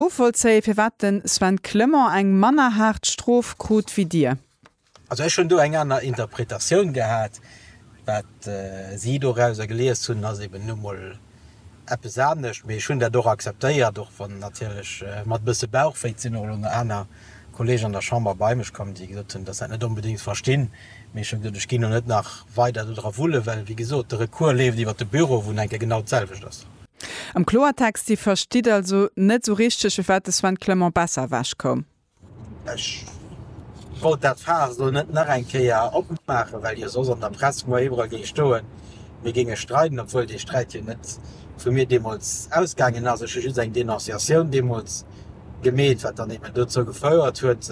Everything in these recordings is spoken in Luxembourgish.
Novollzéien, firwat de Sven Clement eng manner haart Strof krut wéi Dir? Also ech hunn do eng aner Interpretatioun gehat. Wat si dorauser gelies hunn, ass eben nu mol eppes anescht. Mee ech hunn dat och akzeptéiert, och wann natierlech mat e bësse Bauchwéi sinn och elo nach aner Kolleegen an der Chamber bei mech komm, déi gesot hunn, datt se dat net onbedéngt verstinn. Mee ech hu gesot, ech ginn och net nach weider dodra wulle well, wéi gesot, de Recours leeft iwwert de Büro, wou et eng Kéier genau d'selwecht ass. Am Kloertext, Dir verstitt also net esou richteg, fir wat de Sven Clement besser ewech koum? Ech wollt dat Faass elo net nach eng Kéier opmaachen, well jo soss an der Press muer iwwerall géing stoen, mir géinge streiden, obwuel dee Sträit jo net vu mir deemools ausgaangen ass. Ech hu just eng Denonciatioun deemools gemeet, wat dann eben dozou gefouert huet,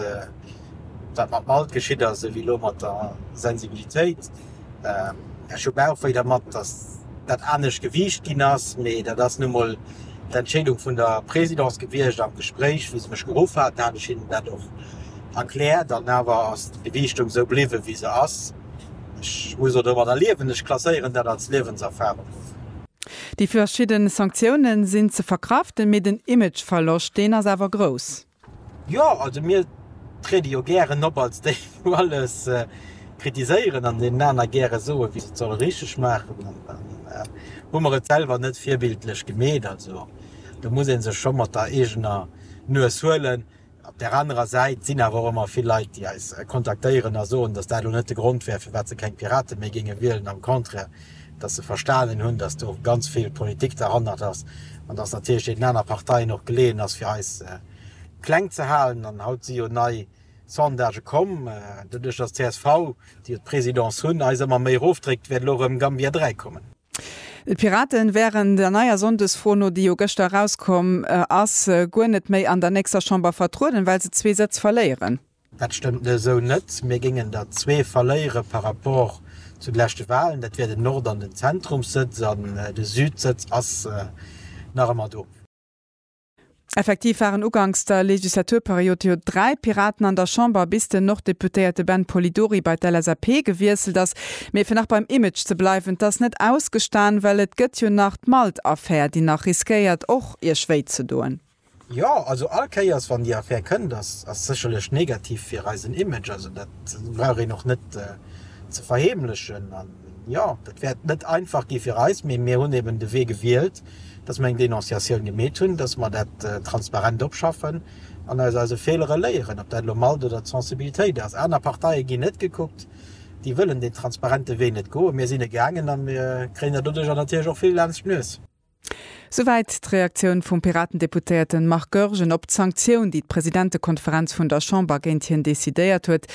Wat mat Malt geschitt ass, ewéi elo mat der Sensibilitéit. Ech hu Bauchwéi dermat, datt dat anescht gewiicht ginn ass, mee dat ass nu mol d'Entscheedung vun der Présidence gewiescht am Gespréich. Wéi se mech geruff haten, hat ech hinnen dat och erkläert an awer ass d'Gewiichtung esou bliwwen, wéi se ass. Ech muss och domadder liewen. Ech klasséieren dat als Liewenserfarung of. Déi verschidden Sanktiounen sinn ze verkraften, mee den Imageverloscht, deen ass awer grouss. Jo, also mir triede jo gären op als déi wou alles kritiséieren an deenen aner gäre soe wéi se et solle richteg maachen an dann hu mer et selwer net virbildlech gemeet. Also do muss ee sech scho mat der eegener Nues huelen. Op där anerer Säit sinn awer och ëmmer vill Leit déi eis kontaktéieren a soen, datt dat elo net de Grond wär firwat se keng Pirate méi géinge wielen, am Contraire. dass se verstanen hunn, dass do ganz vill Politik derhannert ass an dass natierlech deenen aner Parteien och geleeën ass, fir eis kleng ze halen. An haut si jo nei Sondagë komm, doduerch dass d'CSV, déi jo d'Présidence hunn, eis ëmmer méi erofdréckt, wäert elo erëm Gambia 3 kommen. D'Piraten wären der neier Sonndesfro no, déi jo gëschter erauskomm ass, guer net méi an der nächster Chamber vertrueden, well se zwee Sëtz verléieren. Dat stëmmt esou net. Mir géingen der zwee verléiere par rapport zu de leschte Walen. Dat wier den Nord an den Zentrumssëtz. An de Südsëtz ass nach ëmmer do. Effektiv waren uganks der Legislaturperiod jo dräi Piraten an der Chamber, bis den Nord-Deputéierte Ben Polidori bei d'LSAP gewiesselt ass. Mee fir nach beim Image ze bleiwen, 't ass net ausgestan, well et gëtt jo nach d'Malt-Affär, déi nach riskéiert och Iech wéi ze doen. Jo, also all Kéiers wann déi Affär kënnt, ass ass sécherlech negativ fir eisen Image, also dat brauch een och net ze verheemlechen. An jo, dat wäert net einfach gi fir eis, mee mir hunn eben de Wee gewielt, datt mer eng Denonciatioun gemeet hunn, datt mer dat transparent opschaffen an aus eise Feelere léieren, ob dat elo Malt oder d'Sensibilitéit ass. Aner Parteie ginn net gekuckt, déi wëllen deen transparente Wee net goen. Mir sinn e gaangen a mir kréien der doduerjer natierlech och vill laanscht d'Nues. Souwäit d'Reaktioun vum Piraten-Deputéierten Marc Goergen op d'Sanktioun, déi d'Presidentekonferenz vun der Chamber géint hien decidéiert huet.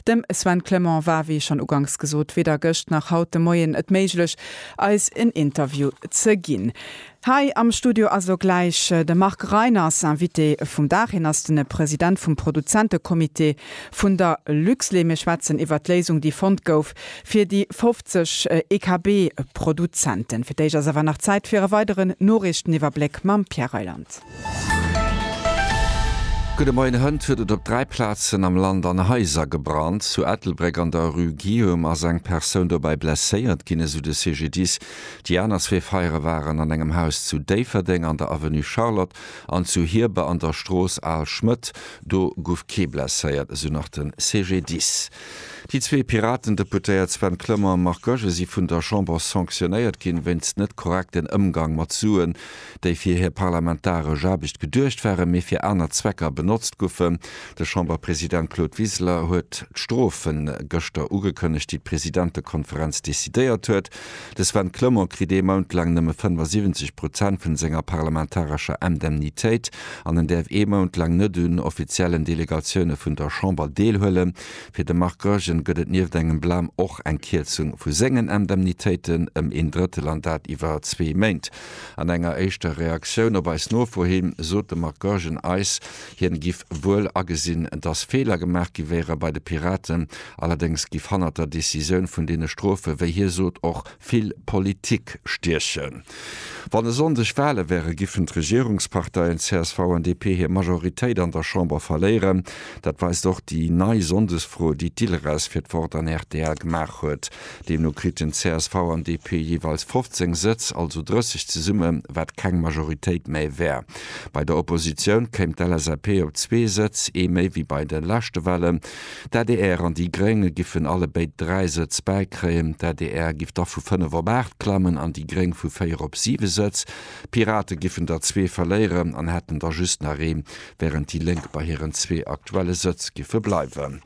Dem Sven Clement war, wéi schonn uganks gesot, weder gëscht nach haut de Moien et méiglech, eis en Interview ze ginn. Hei am Studio ass elo gläich de Marc Reiners, Invité vum Dag. Hien ass de President vum Produzentecomité vun der Luxlait. Mir schwätzen iwwert d'Léisung, déi fonnt gouf, Fir déi 50 EKB-Produzenten. Fir d'éischt ass awer nach Zäit fir e weideren Noriichteniwwerbléck mam Pierre Reyland. Gudde Moien, Hënt huet et op dräi Plazen am Land an Haiser gebrannt. Zu Ettelbréck an der Rue Guillaume ass eng Persoun dobäi blesséiert ginn, esou de CGDIS. Déi aner zwee Feiere waren an engem Haus zu Déifferdeng an der Avenue Charlotte an zu Hierber an der Strooss Al Schmëtt. Do gouf kee blesséiert, esou nach de CGDIS. Déi zwee Piraten-Deputéiert Sven Clement a Marc Goergen si vun der Chamber sanctionéiert ginn, wéinst net korrekten Ëmgang mat Suen, déi fir hir parlamentaresch Aarbecht geduecht waren, mee fir aner Zwecker benotzt goufen. De Chamberpresident Claude Wiseler huet d'Strofe gëschter ugekënnegt, déi d'Presidentekonferenz decidéiert huet. De Sven Clement kritt ee Mount laang nëmme 75 Prozent vun senger parlamentarescher Indemnitéit an en däerf ee Mount laang net un offiziellen Delegatioune vun der Chamber deelhuelen. Fir de Marc Goergen gëtt et nieft engem Blam och eng Kierzung vu sengen Indemnitéiten ëm een Drëttel an dat iwwer zwee Méint. An enger éischter Reaktioun op eis Nofro him sot de Marc Goergen eis, Hien giff wuel agesinn, dass Feeler gemaach gi wéiere bei de Piraten, allerdéngs giff hannert der Decisioun vun deene Strofe, wéi hie sot, och vill Politik stiechen. Wann e Sonndeg Wale wäre giffen d'Regierungsparteien csv an DP hir Majoritéit an der Chamber verléieren. Dat weist och déi nei Sonndesfro, déi d'ILRES fir d'Wort an rtl gemaach huet. Deemno kriten csv an DP jeeweils 15 Sëtz, also 30 zesumme, wat keng Majoritéit méi wär. Bei der Oppositioun kéim d'LSAP op zwee Sëtz, ee méi wéi bei de leschte Wahlen. D'adr an déi Gréng giffen allebéid dräi Sëtz bäikréien. D'adr giff da vu fënnef op aacht klammen an déi Gréng vu véier op siwe Sëtz. D'Pirate giffen der zwee verléieren an hätten da just nach ee, wärend déi Lénk bei hiren zwee aktuelle Sëtz giffe bleiwen.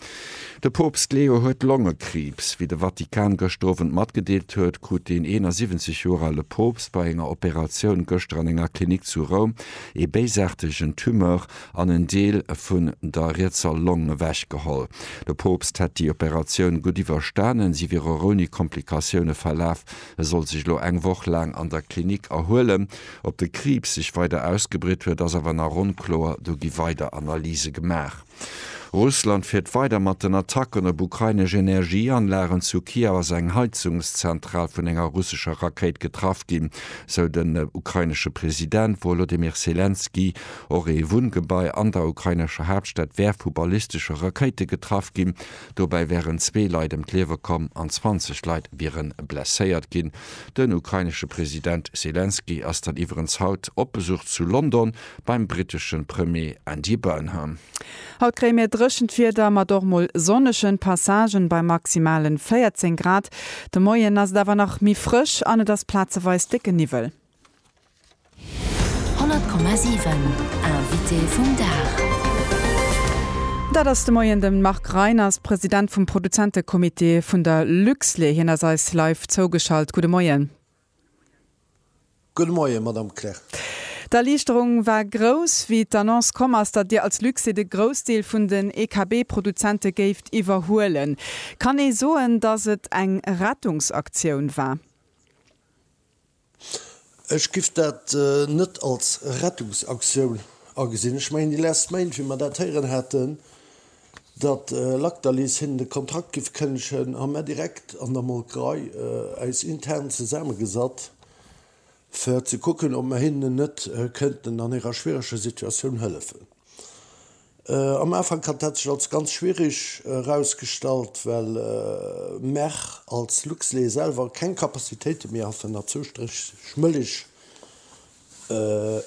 De Poopst Leo huet Longekriibs. Wéi de Vatikan gëschter Owend matgedeelt huet, krut deen 71 Joer ale Poopst bei enger Operatioun gëschter an enger Klinik zu Roum ee béisaartegen Tumeur an en Deel vun der rietser Long ewech geholl. De Poopst hätt déi Operatioun gutt iwwerstanen, si wier och ouni Komplikatioune verlaf. E soll sech elo eng Woch laang an der Klinik erhuelen. Ob de Kriibs sech weider ausgebritt huet, ass awer nach onkloer, do gi weider Analyse gemaach. Russland fiert weider mat den Attacken op ukrainesch Energieanlagen. Zu Kiew ass eng Heizungszentral vun enger russescher Rakéit getraff ginn, sou den ukrainesche President Wolodymyr Selenskyj. Och ee Wunngebai an der ukrainescher Haaptstad wär vu ballistesche Rakéite getraff ginn. Dobäi wären zwee Leit ëm d'Liewe komm an 20 Leit wiere blesséiert ginn. Den ukrainesche President Selenskyj ass dann iwwerens haut op Besuch zu London. beim britteschen Premier Andy Burnham. Haut kréie mir dréchent Wieder mat och mol sonnegen Passagen bei maximalen 14 Grad. De Moien ass et awer nach méi frësch an et ass plazeweis décke Niwwel. 100,7 Invité vum Dag. Dat ass de Moien de Marc Reiners, President vum Produzentecomité vun der Luxlait. Hien ass eis live zougeschalt. Gudde Moien. Gudde Moien, Madame Kleer. D'Erliichterung war grouss, wéi d'Annonce komm ass, datt Dir als Luxit e Groussdeel vun den EKB-Produzente géift iwwerhuelen. Kann ee soen, datt et eng Rettungsaktioun war? Ech giff dat net als Rettungsaktioun agesinn. Ech mengen, déi last Mail, wéi mer dat héieren haten, datt Lactalis hinnen de Kontrakt giff kënnegen, hu mär direkt an der Molkerei äis intern zesaammegesat fir ze kucken ob mär hinnen net kënnten an hirer schwiereger Situatioun hëllefen. Am Ufank hat dat sech als ganz schwiereg erausgestallt, well mär als Luxlait selwer keng Capacitéite méi haten erzou striech Mëllech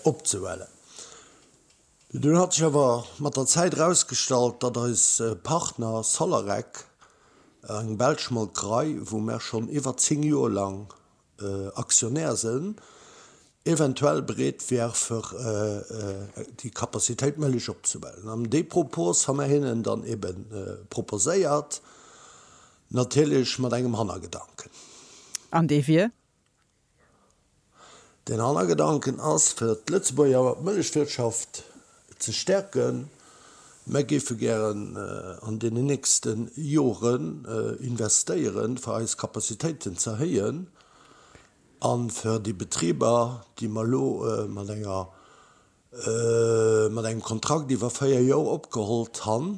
opzehellen. Dunn hat sech awer mat der Zäit erausgestallt, datt eis Partner Solarec, eng belsch Molkerei, wou mer schonn iwwer 10 Joer laang Aktionär sinn, eventuell bereet wier fir déi Capacitéit Mëllech opzebellen. An dee Propos hu mer hinnen dann ebe proposéiert, natierlech mat engem Hannergedanken. An dee wier? Den Hannergedanken ass, fir d'Lëtzebuerger Mëllechwirtschaft ze stäerken. Mer géife gären an deenen nächste Joren investéieren, fir eis Capacitéiten ze erhéien a fir déi Betriber, déi mer elo mat enger mat engem Kontrakt iwwer 4 Joer opgehollt han,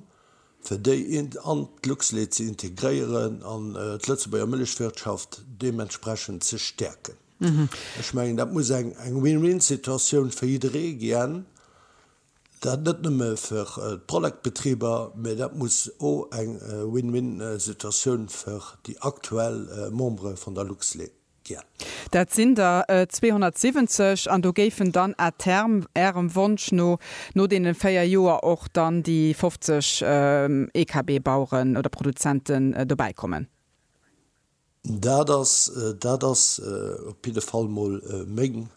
fir déi an d'Luxlait ze integréieren an d'Lëtzebuerger Mëllechwirtschaft deementsprechend ze stäerken. Ech mengen, dat muss eng Win-win-Situatioun fir jidderee gien, dat net nëmme fir d'Prolecbetriber, mä dat muss o eng Win-win-Situatioun fir déi aktuell Membere vun der Luxlait. Dat sinn der 270 an do géifen dann à terme, Ärem Wonsch no, no deene véier Joer och dann déi 50 EKB-Baueren oder Produzenten dobäi kommen. Dat ass, dat ass op jidde Fall mol meng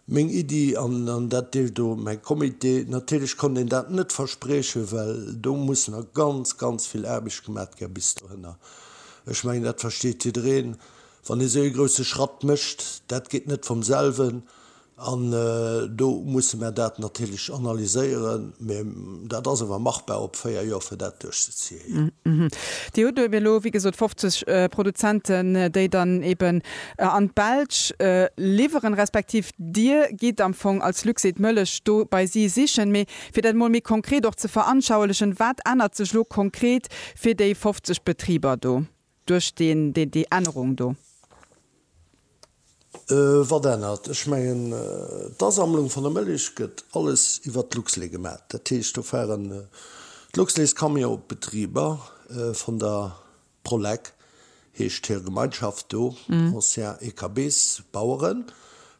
meng Iddi an dat deelt do mäi Comité. Natierlech konnt een dat net verspriechen, well do muss nach ganz, ganz vill Aarbecht gemat gär bis dohinner. Ech mengen, dat versteet jiddereen, wann ee sou ee grousse Schratt mécht, dat geet net vum selwen an do musse mär dat natierlech analyséieren. Mä dat ass awer machbar op véier Joer, fir dat duerchzeziehen. Dir hutt eben elo, wéi gesot, 50 Produzenten, déi dann eben an d'Belsch liwweren, respektiv Dir gitt am Fong als Luxaid d'Mëllech do bei si sichen. Mee fir dat emol méi konkret och ze veranschauelechen, Wat ännert sech elo konkret fir déi 50 Betriber do? Duerch deen, déi, déi Ännerung do? Wat ännert? Ech mengen, d'Asammlung vun der Mëllech gëtt alles iwwert d'Luxlait gemaach. Dat heescht, do fahren d'Luxlaitscamionsbetriber vun der Prolec, heescht hir Gemeinschaft do, Anciens Écabés, Baueren,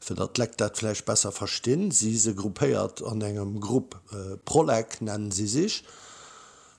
fir datt d'Lekt dat vläicht besser verstinn, si se gruppéiert an engem Grupp Prolec, nennen si sech.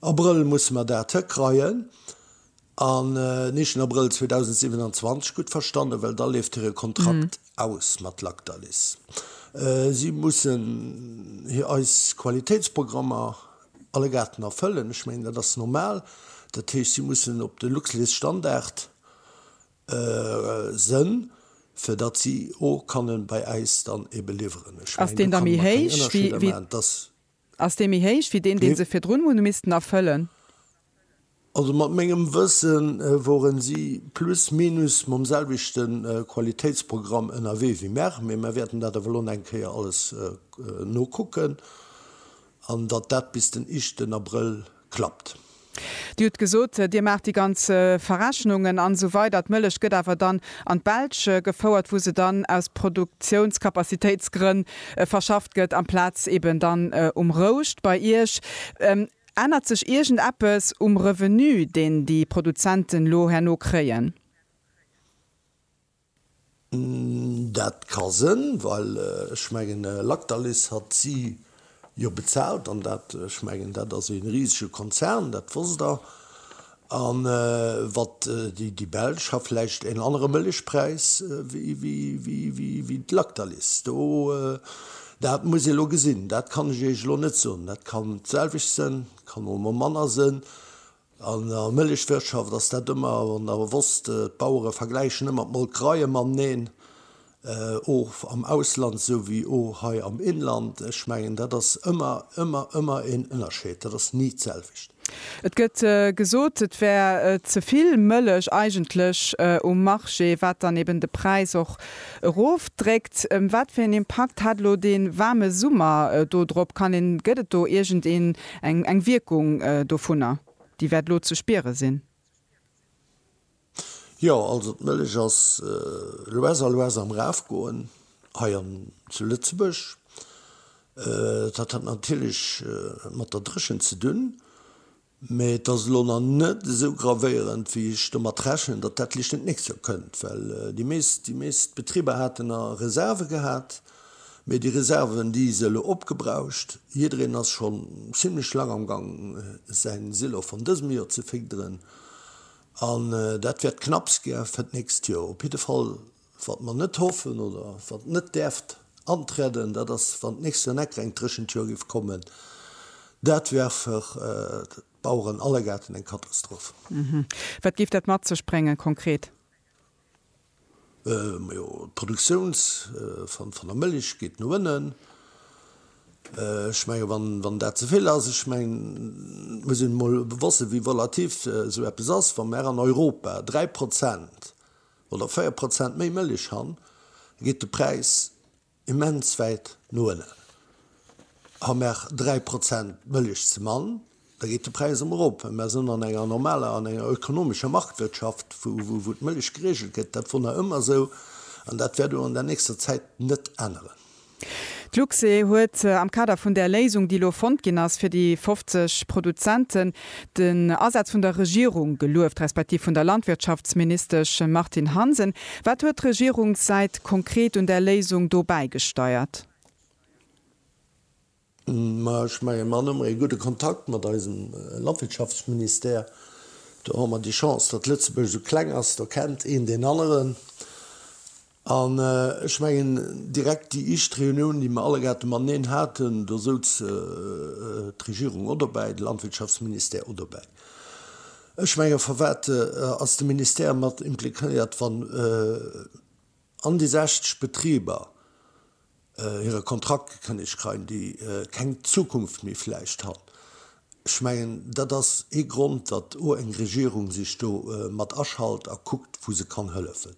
Abrëll musse mer dat hëkreien an en éischten Abrëll 2027, gutt verstannen, well da leeft hire Kontrakt aus mat Lactalis. Si mussen hir eis Qualitéitsprogrammer allegaarten erfëllen. Ech mengen, dat ass normal. Dat heescht, si mussen op de Luxlait Standard sënn, fir datt si o kanne bei äis dann ebe liwweren. Ech mengen, do kann een nach keng Ënnerscheeder maachen. Ass dee méi héich wéi deen, dee se virdrun hu missten erfëllen? Also mat mengem Wëssen woren si plus minus mam selwechte Qualitéitsprogramm ënnerwee wéi mer, mee mer wäerten dat awer elo nach eng Kéier alles nokucken an datt dat bis den iischten Abrëll klappt. Dir hutt gesot, Dir maacht déi ganz Verrechnungen an esou weider. D'Mëllech gëtt awer dann an d'Belsch gefouert, wou se dann aus Produktiounskapazitéitsgrënn verschafft gëtt, amplaz eben dann um Rouscht bei Iech. Ännert sech iergend eppes um Revenu, deen déi Produzenten elo herno kréien? Dat ka sënn, well ech mengen Lactalis hat si jo bezaalt an dat, ech mengen dat ass ee risege Konzern, dat wosst Der. A wat déi Belsch ha vläicht een anere Mëllechpräis wéi d'Lactalis. Do, dat muss ee lo gesinn, dat kann ech Iech elo net soen. Dat kann d'selwecht sënn, kann och emol manner sënn. An der Mëllechwirtschaft ass dat ëmmer an der Wosst, d'Bauere vergläichen ëmmer d'Molkereie mateneen, och am Ausland esou wéi och hei am Inland. Ech mengen, dat ass ëmmer, ëmmer, ëmmer een Ënnerscheed, dat ass ni d'selwecht. Et gëtt gesot, et wär ze vill Mëllech eigentlech um Marché, wat dann eben de Präis och erofdréckt. Wat fir een Impakt hat elo dee waarme Summer do drop? Kann een, gëtt et do iergendeen Eng eng Wierkung dovunner, déi wäert elo ze spiere sinn? Jo, also d'Mëllech ass lues a lues am Erafgoen hei an zu Lëtzebuerg. Dat hat natierlech mat der Dréchent ze dunn, mä et ass elo nach net esou gravéierend, wéi ech domat rechnen, datt dat vläicht nächst Joer kënnt, well déi meescht déi meescht Betriber haten nach Reserve gehat. Mee déi Reserven, déi se elo opgebraucht, jiddereen ass schonn zimlech laang am Gang, säin Silo vun dësem Jor ze figderen. An dat wäert knapps gä fir d'nächst Jor. Op jidde Fall, wat mer net hoffen oder wat net däerft anträden, dat ass, wann d'nächst Jor net greng dréchent Jor géif kommen. Dat wär fir d'Baueren allegaarten eng Katastroph. Wat géif dat mat sech bréngen konkret? Majo, d'Produktiouns van van der Mëlich geet no ënnen. Ech menge wann wann dat ze vill ass, ech meng et muss een mol wëssen wéi volatif esou eppes ass. Wa mer an Europa 3 Prozent oder 4 Prozent méi Mëlich han, geet de Präis immens wäit no ënnen. A mer 3 Prozent Mëllech ze mann, da geet de Präis emol erop. Mä mer sinn an enger normaler, an enger ökonomescher Marktwirtschaft, wou d'Mëllech geregelt gëtt. Dat wor nach ëmmer esou an dat wäert och an der nächster Zäit net änneren. D'Luxe huet am Kader vun där Léisung, déi elo fonnt ginn ass fir déi 50 Produzenten, Den Asaz vun der Regierung gelueft, respektiv vun der Landwirtschaftsministesch Martine Hansen. Wat huet d'Regierungssäit konkret un där Léisung do bäigesteiert? Ma ech mengen, mer hunn ëmmer ee gudde Kontakt mat eisem Landwirtschaftsministère. Do hu mer déi Chance, datt Lëtzebuerg esou kleng ass, do kennt een deen aneren. An ech mengen, direkt déi éischt Reunioun, déi mer allegaarten mateneen haten, do souz d'Regierung och dobäi, de Landwirtschaftsministère och dobäi. Ech mengen, firwat ass de Ministère mat impliquéiert, wann an déi 60 Betriber, hire Kontrakt gekënnegt kreien, déi keng Zukunft méi vläicht han. Ech mengen, dat ass ee Grond, datt o eng Regierung sech do mat aschalt a kuckt, wou se kann hëllefen.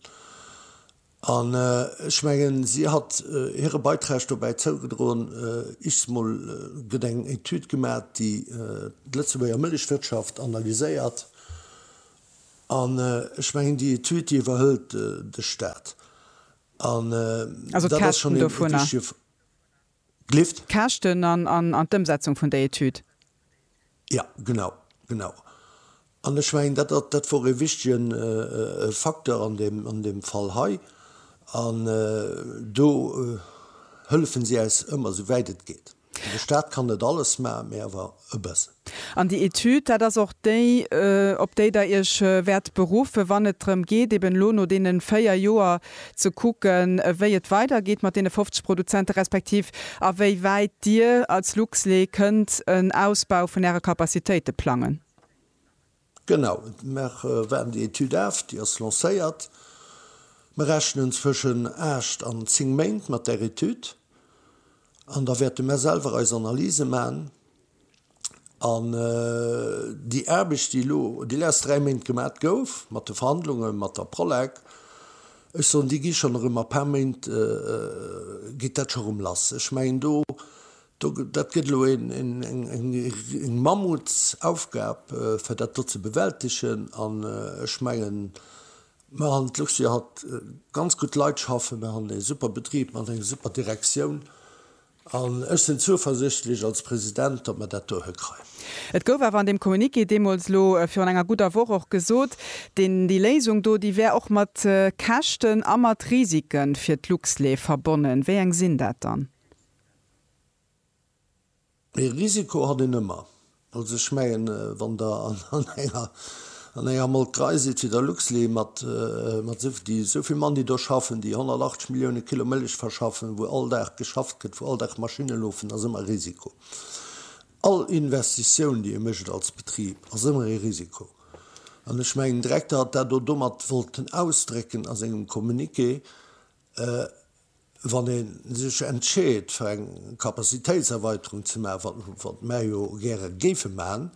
An ech mengen, si hat hire Beiträg dobäi zougedroen, ichs mol, gëtt eng Etüd gemat, déi d'Lëtzebuerger Mëllechwirtschaft analyséiert. An ech mengen, déi Etüd, déi iwwerhëlt de Stat. Also d'Käschten dovunner? D'Lift? D'Käschten an d'Ëmsetzung vun der Etüd? Jo, genau, genau. An ech mengen, dat wor ee wichtige Facteur an deem Fall hei. An do hëllefe si äis ëmmer, esouwäit et geet. De Staat kann net alles maachen, mee awer e bëssen. An déi Etüd, dat ass och déi, op déi Der Iech wäert beruffen, wann et drëm geet, eben elo no deene véier Joer ze kucken, wéi et weidergeet mat deene 50 Produzenten, respektiv a wéi wäit Dir als Luxlait kënnt en Ausbau vun Äre Capacitéite plangen. Genau, mer waarden déi Etüd af, déi ass lancéiert. Mer rechnen zwëschen aacht an zéng Méint mat där Etüd an da wäerte mer selwer eis Analyse maachen. An déi Aarbecht, déi elo déi lest dräi Méint gemat gouf mat de Verhandlunge mat der Prolek, ech soen, déi gi schonn erëm a paar Méint geet dat scho rëm lass. Ech mengen do Dat gëtt elo eng Mammutsaufgab, fir dat do ze bewältegen. An ech mengen, mer han d'Lux jo haut ganz gutt Leit schaffen, mer han e super Betrib mat enger super Direktioun an ech sinn zuversichtlech als President, datt mer dat do hëkreien. Et gouf awer an deem Communiqué deemools, elo virun enger gudder Woch, och gesot, déi Léisung do, déi wär och mat Käschten a mat Risike fir d'Luxlait verbonnen. Wéi eng sinn dat dann? Ee Risiko hat een ëmmer. Also ech mengen, wann Der an enger Molkerei sidd wéi der Luxlait mat esou vill Mann, déi do schaffen, déi 180 Millioune Kilo Mëllech verschaffen, wou all Dag geschafft gëtt, wou all Dag Maschinne lofen, ass ëmmer e Risiko. All Investitioun, déi ee mécht als Betrib, ass ëmmer ee Risiko. An ech mengen, den Direkter hat dat och domat wollten ausdrécken a sengem Communiqué. Wann ee sech entscheet fir eng Capacitéitserweiterung ze maachen, wat mär jo gäre géife maachen,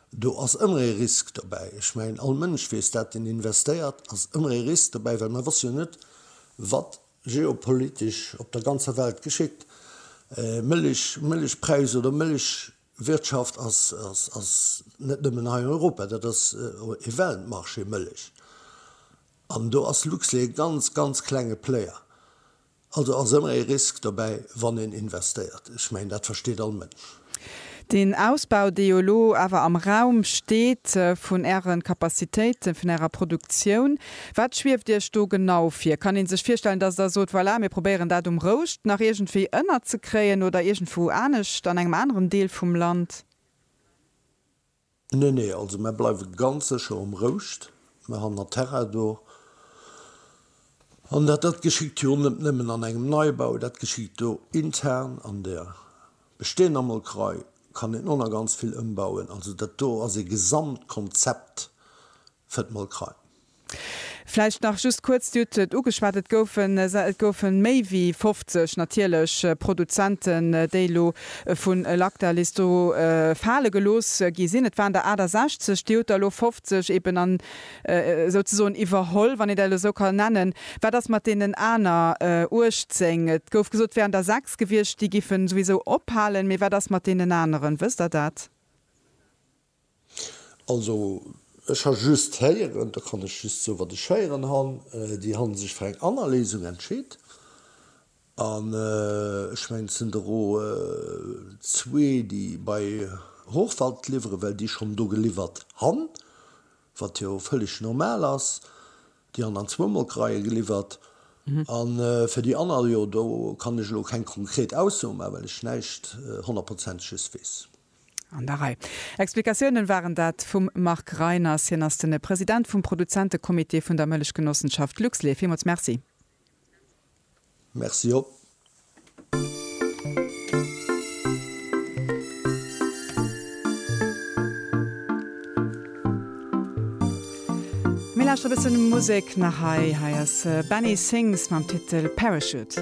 do ass ëmmer ee Risk dobäi. Ech mengen all Mënsch weess dat, deen investéiert, ass ëmmer ee Risk dobäi, well mer wësse jo net wat geopolitesch op der ganzer Welt geschitt. Mëllech, Mëllechpräis oder Mëllech Wirtschaft ass ass net nëmmen hei an Europa, dat ass e Weltmarché, Mëllech. An do ass Luxlait e ganz, ganz klenge Player. Also ass ëmmer e Risk dobäi, wann een investéiert. Ech mengen, dat versteet all Mënsch. Deen Ausbau, dee jo elo awer am Raum steet vun Äre Capacitéiten, vun Ärer Produktioun, Wat schwieft Iech do genau vir? Kann ee sech virstellen, datt Der sot, voilà, mir probéieren dat um Rouscht nach iergendwéi ënnerzekréien oder iergendwou anescht an engem aneren Deel vum Land? Nee, nee, also mär bleiwe ganz sécher um Rouscht. Mär han der Terrain do. An dat dat geschitt jo net nëmmen an engem Neibau, dat geschitt do intern an der bestehender Molkerei kann een och nach ganz vill ëmbauen. Also dat do ass ee Gesamtkonzept fir d'Molkerei. Vläicht nach just kuerz, Dir hutt et ugeschwat, et goufe méi wéi 50 natierlech Produzenten, déi elo vu Lactalis do fale gelooss gi sinn. Et waren der 68, Dir hutt der elo 50 eben esouzesoen iwwerholl, wann een dat elo esou kann nennen. Wat ass mat deenen aner 18? Et gouf gesot, et wären der 6 gewiescht, déi géifen souwisou ophalen. Mee wat ass mat deenen aneren? Wësst Der dat? Also ech ha just héieren, da kann ech just soe wat ech héieren han, déi han sech fir eng anner Léisung entscheet an ech mengen et sen dero zwee déi bei Hochwald liwweren, well déi schon do geliwwert han, wat jo völleg normal as, déi han dann zwou Molkereien geliwwert an fir déi anner, jo do kann ech elo keng konkret Ausso maan, well ech näischt honnertprozentiges wees. An der Rei Explikatiounen waren dat vum Marc Reiners. Hien ass de President vum Produzentecomité vun der Mëllechgenossenschaft Luxlait. Villmools Merci. Merci op. Mir lauschteren e bëssen Musek nach hei. Hei ass Benny Sings mam Titel Parachute.